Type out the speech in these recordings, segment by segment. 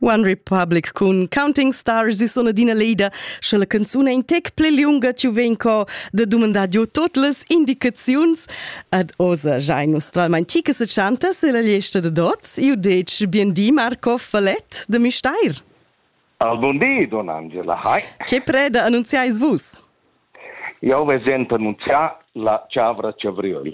One Republic cun Counting Stars e sona d'ina leida, sche la canzuna in tec pli lunga ci vegn co da dumandar giu tot las indicaziuns ad osa giai nostralmain chi che se chanta se la liesta da dots, io dec bien di Marco Falet de Misteir. Al bon di, don Angela, hai. Ce preda annunziais vus? Io ves ent annunzià la Chavra Chavriol.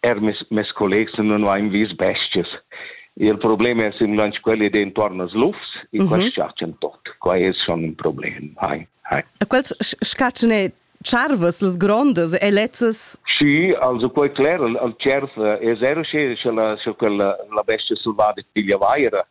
Er mes, mes collegs non hain vis bestias. Il problem es in lunch quelli d'intuorn als lufs e mm -hmm. quels schatschen tot. Qua es schon un problem. Hai, hai. E quels schatschen e charvas, las grondas e lezzas? Sì, also quei cler, al cerf es er sche sche la sche quella la bestia selvada piglia vaira.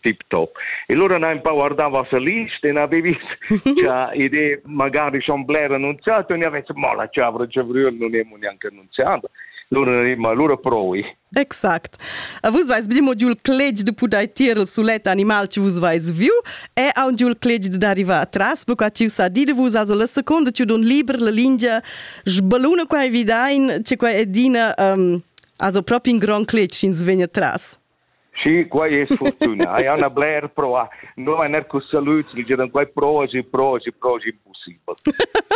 tip top. E lura na empau guardava se list e na devi cha ide magari schon bler annunziato e ne avesse mo la chavra chavrier non è neanche annunziata. Lura ma lura provi. Exact. A vus vais bdim odiul clegi de pudai tir il sulet animal che vus vais viu e a un diul clegi de arriva atras perquai tiu sa di de vus as la seconda tiu don liber la lingia sbaluna qua evidain che qua edina um, also proprio in gran clegi ins vegna tras. Sì, quai es fortünà. Jau n'ha bler provà. No m'han eir cus salüds che diran quai prova si, prova si, prova si, impossibel.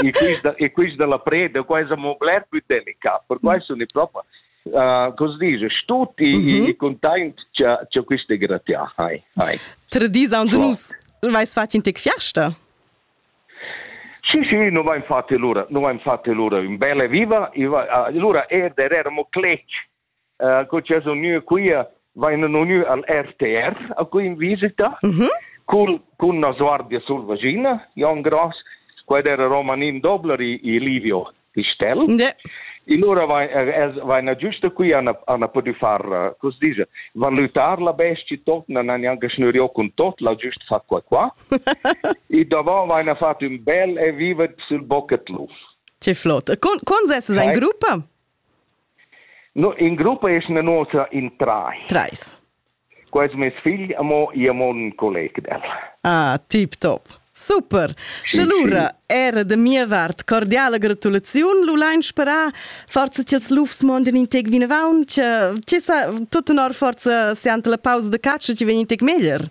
E quist, e quist da la preda, qua es amo bler più delicat, per qua sun i propo uh, cosa dice, tutti mm -hmm. i content cha, cha quist è gratià. Hai, hai. Tradizan de nus, vais fat in tec fiasta? Sì, sì, non va infatti l'ora, non va infatti l'ora, un bella viva, allora er der eramo clec uh, co c'è uniu qui vain uniu al RTR a cui in visita mm -hmm. cul cun na guardia sul vagina Jon Gross quad era Romanin Dobler e, e Livio Pistel yeah. In ora vaina giusta qui ana, ana podi far, uh, cos dice, valutar la bestie tot, nan an anche schnürio con tot, la giust fa qua qua. e davant vaina fatto un bel e vivet sul bocketluf. Che flott. Con, con sesses in gruppa? No, in gruppa es na nosa in trais. Trais. Qua es meis figl amo, io amo ün colleg del. Ah, tip top. Super! Sche sì, lura sì. era da mia vart cordiala gratulaziun, lu lein sperar forza che els lufs mondin in tec vinavant, che sa, tut honor forza siante la pausa de caccia, che vegn in tec meglier.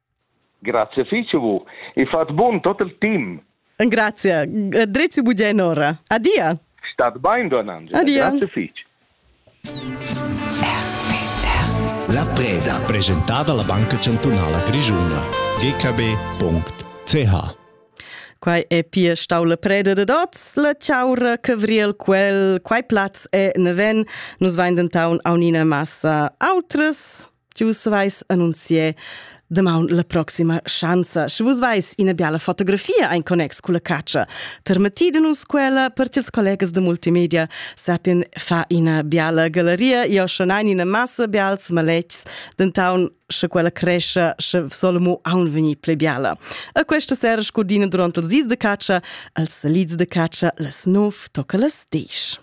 Grazie fich a vus e fat bun tot il team. Grazie. Drezi bugianora. Adia. Stat bain, Donando. Adia. Grazie fich. La preda. Presentata alla Banca Cantunala Grigiuna. gkb.ch Quai è pia stau la preda de dots, la chaura cavriel quel, quai plaz è neven, nus vain dentaun aunina massa autras. Vus vais annunzier damaun la proxima schanza. Sche vus vais ina biala fotografia ein connex cu la caccia, termeti de nus quella per ties collegas de multimedia sapien fa ina biala galeria. Io schon ein ina massa bials maletgs, dentaun sche quella crescia, sche solemo aun veni ple biala. A questa sera scordina durant il zis de caccia, als salids de caccia, las nov tocca las disch.